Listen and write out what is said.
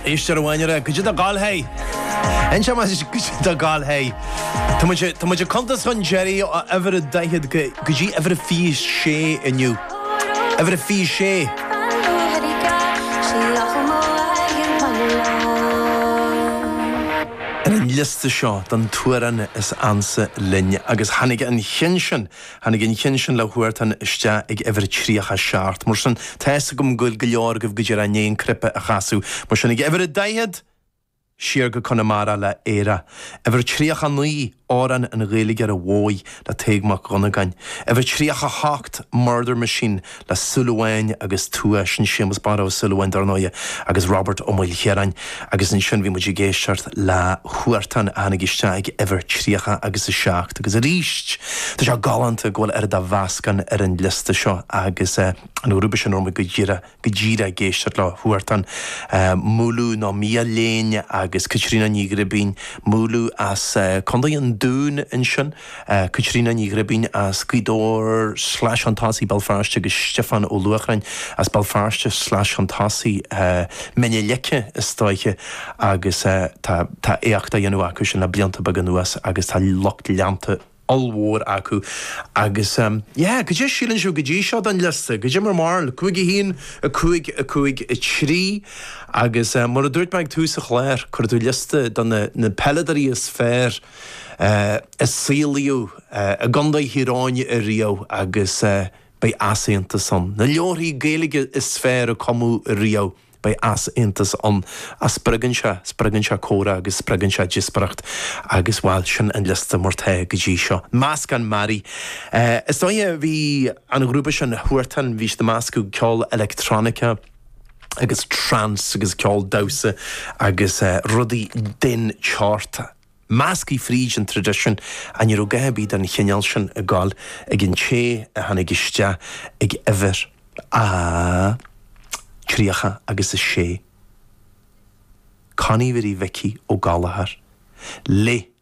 Éist ar a bhainne-ra, goidé do gal hé? Inseoidh muid duit goidé do gal hé. Tá muid, tá muid ag cuntas chun deiridh ó uimhir a daichead go, go dtí uimhir a fiche sé inniu. Uimhir a fiche sé. Ar an liosta seo den t-amhrán is ansa linn agus tháinig an ceann sin. Tháinig an ceann sin le Huartan isteach ag uimhir 37. Mar sin, tá fhios agam go bhfuil go leor agaibh go díreach i ndiaidh an cnaipe a chasadh. Mar sin, ag uimhir a 40! Siar go Conamara le Éire. Uimhir 39, Amhrán an Ghaeilgeora Mhóir le Tadhg Mac Dhonnagáin. Uimhir 38, Murder Machine le Súil Amháin agus Tuath, sin Séamus Barra Ó Súilleabháin dar ndóighe, agus Robert Ó Maoilchiaráin, agus ansin bhí muid ag éisteacht le Huartan a tháinig isteach ag uimhir 30 agus 7 agus aríst tá sé galánta go bhfuil oiread de mheascán ar an liosta seo agus an grúpa sin a raibh muid go díreach go díreach ag éisteacht le Huartan, Múlú nó Miadhachlughain agus Caitríona Ní Ghribín, Múlú as Contae an Dúin ansin. Caitríona Ní Ghribín as Gaoth Dobhair sleais chun tosaigh Béal Feirste, agus Stiofán Ó Luachráin as Béal Feirste sleais chun tosaigh Mín na Leice is dóiche agus tá éacht á dhéanamh acu sin le blianta beaga anuas agus tá lucht leanta ollmhór acu agus yeah, goidé síleann sibh go dtí seo den liosta? Goidé bhur mbarúil? Cúig a haon, a cúig, a cúig a trí agus mar a dúirt mé ag tús an chláir, cuir tú liosta de na peileadóirí is fearr, a saolaíodh i gContae Thír Eoghain riamh agus beidh easaontas ann. Na leabharthaí Gaeilge is fearr a cumadh riamh, beidh easaontas ann. Ach spreagann sé, spreagann sé comhrá agus spreagann sé díospóireacht agus, bhuel, sin an liosta mar atá go dtí seo. Meascán mearaí. Is dóiche, bhí an grúpa sin, Huartan, bhí siad ag meascadh ceol electronica, agus trance agus ceol damhsa agus rudaí den tseort measctha fríd an traidisiún ach ní raibh a dhath ar bith den chineál sin ag goil ag an té a tháinig isteach ag uimhir a 36. Connie Mhary Mhicí Ó Gallchóir, le.